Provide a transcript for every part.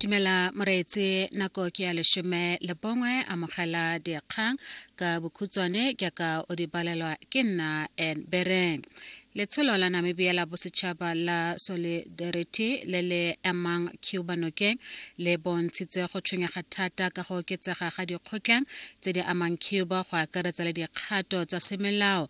dumela moreetse nako ke ya leshome le bongwe amogela dikgang ka bokhutswane ke ka o di balelwa ke nna en bereng letsholo la namibia la bosetšhaba la solidarity le le emang cuba nokeng le bontshitse go tshwenyega thata ka go oketsega ga dikgotlang tse di amang cuba go akaretsa le dikgato tsa semolao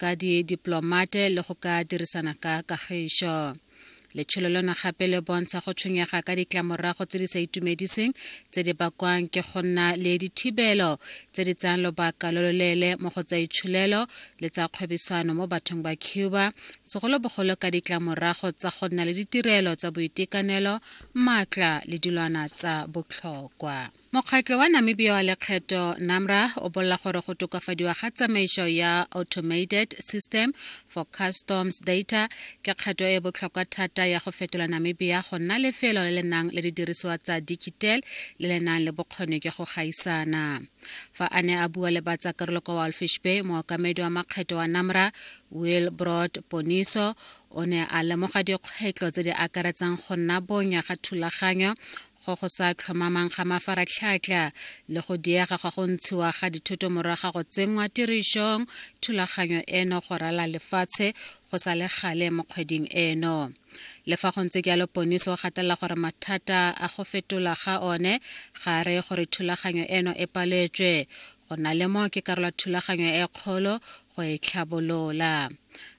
ka didiplomate le go ka dirisana ka kagišo letsholo lona gape le bontsha go tshwenyega ka ditlamorago tse di sa itumediseng tse di bakwang ke go nna le dithibelo tse di tsayang lobaka lo loleele mo go tsa itsholelo le tsa kgwebisano mo bathong ba cuba segolobogolo ka ditlamorago tsa go nna le ditirelo tsa boitekanelo maatla le dilwana tsa botlhokwa Mokgatlo wa Namibia wa Lekgetho, NAMRA, o bolela gore go tokafadiwa ga tsamaiso ya Automated System for Customs Data ke kgato e e botlhokwa thata ya go fetola Namibia go nna lefelo le le nang le didirisiwa tsa digital le le nang le bokgoni jwa go gaisana. Fa a ne a bua le batsakarolo kwa Walfish Bay, mookamedi wa makgetho wa NAMRA, Will Broad Poniso, o ne a lemoga dikgwetlho tse di akaretsang go nna bonya ga thulaganyo go go sa tlhomamang ga mafaratlhatlha le go diega ga go ntshiwa ga dithoto moraga go tsenngwa tirišong thulaganyo eno go rala lefatshe go sa le gale mo kgweding eno le fa go ntse jalo poniso o gatelela gore mathata a go fetola ga one ga a reye gore thulaganyo eno e paletswe go na le mo ke karolo thulaganyo e kgolo go e tlhabolola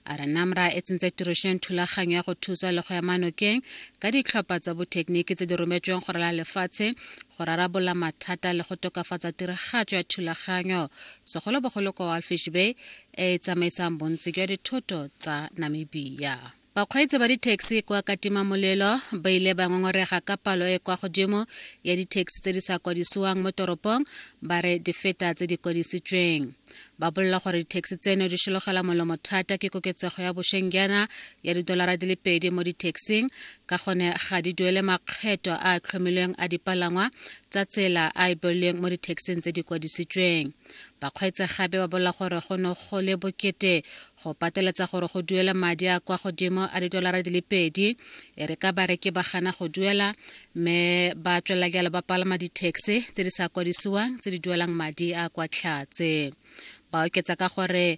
a re namra e tsentse tirišong thulaganyo ya go thusa le go ya manokeng ka ditlhopha tsa bothekeniki tse di rometsweng go rala lefatshe go rarabola mathata le go tokafatsa tiragatso ya thulaganyo segolobogolo kwa walfish bay e e tsamaisang bontsi jwa dithoto tsa namibia Bakgweetsi ba dithekisi kwa Katimamolelo ba ile ba ngongorega ka palo e e kwa godimo ya dithekisi tse di sa kwadisiwang mo toropong ba re di feta tse di kwadisitsweng. Ba bolela gore dithekisi tseno di shologela molomo thata ke koketsego ya bosheng jaana ya didolara di le pedi mo dithekising ka gone ga di duele makgetho a a tlhomilweng a dipalangwa tsa tsela a e beolweng mo dithekising tse di kwadisitsweng. Bakgweetsi gape ba bolela gore go ne go le bokete go pateletsa gore go duele madi a kwa godimo a didolara di le pedi e re ka bareki ba gana go duela mme ba tswelela jalo ba palama di-taxi tse di sa kwadisiwang tse di duelang madi a kwa tlhatse. Ba oketsa ka gore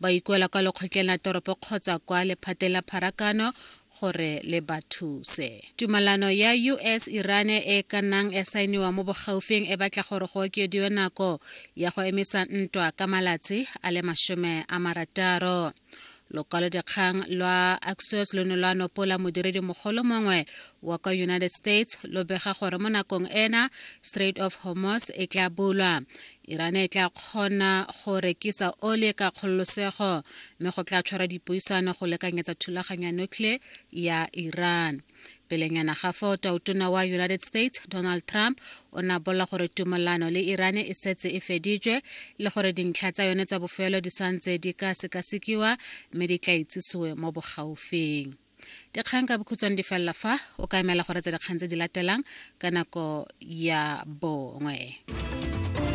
ba ikuela kwa lekgotleng la toropo kgotsa kwa lephateng la pharakano gore le ba thuse. Tumalano ya US-Iran e e ka nnang ya saeniwa mo bogaufing e batla gore go okediwe nako ya go emisa ntwa ka malatsi a le masome a marataro. lokwalodikgang lwa axios lo ne lwa nopola modiredi mogolo mongwe wa kwa united states lo bega gore mo nakong ena strait of hormos e tla bulwa iran e tla kgona go rekisa ole ka kgololosego mme go tla tshwara dipuisano go lekanyetsa thulaganyo ya nuclear ya iran pelenyana ga foo tautona wa united states donald trump o ne a bolela gore tumelano le iran e setse e feditswe le gore dintlha tsa yone tsa bofelo di santse di ka sekasekiwa mme di tla itsisiwe mo bogaufing dikgang ka bokhutswane di felela fa o ka emela gore tsa dikgang tse di latelang ka nako ya bongwe